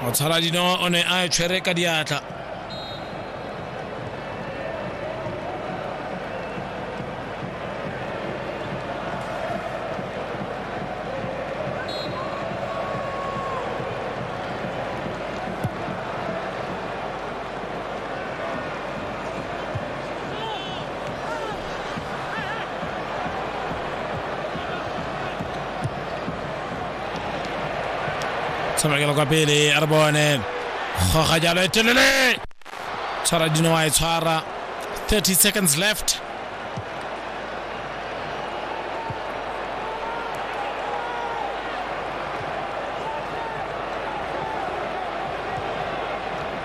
motshaladino o ne a e tshwere ka diatla tshamekela kwa pele a re bone goga jalo e telele tshwara dino wa e tshwara 30 seconds left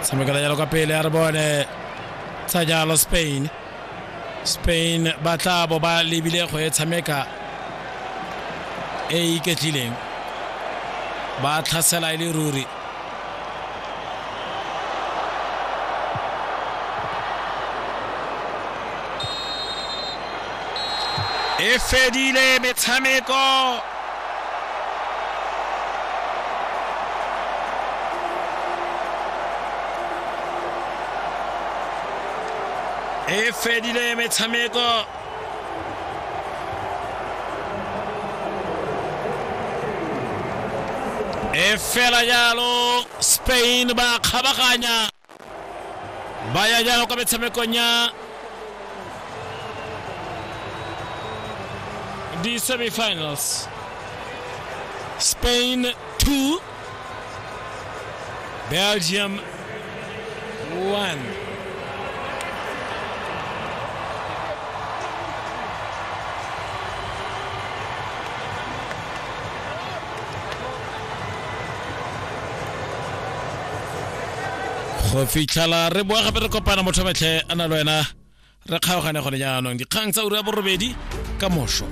tshamekela jalo ka pele a re bone tsa jalo spain spain ba tla bo ba lebile go e tshameka e e iketlileng ba tlhasela e le ruri e fedile metshameko e fedile metshameko e fela jalo spain ba kgabaganya ba ya jalo kwa metshamekong ya di-semifinals spain 2 Belgium 1. go fitlhela re boa gape re kopana motho metlhe a na le wena re kgaogane gone jaanong dikgang tsa ura ya borobedi ka moso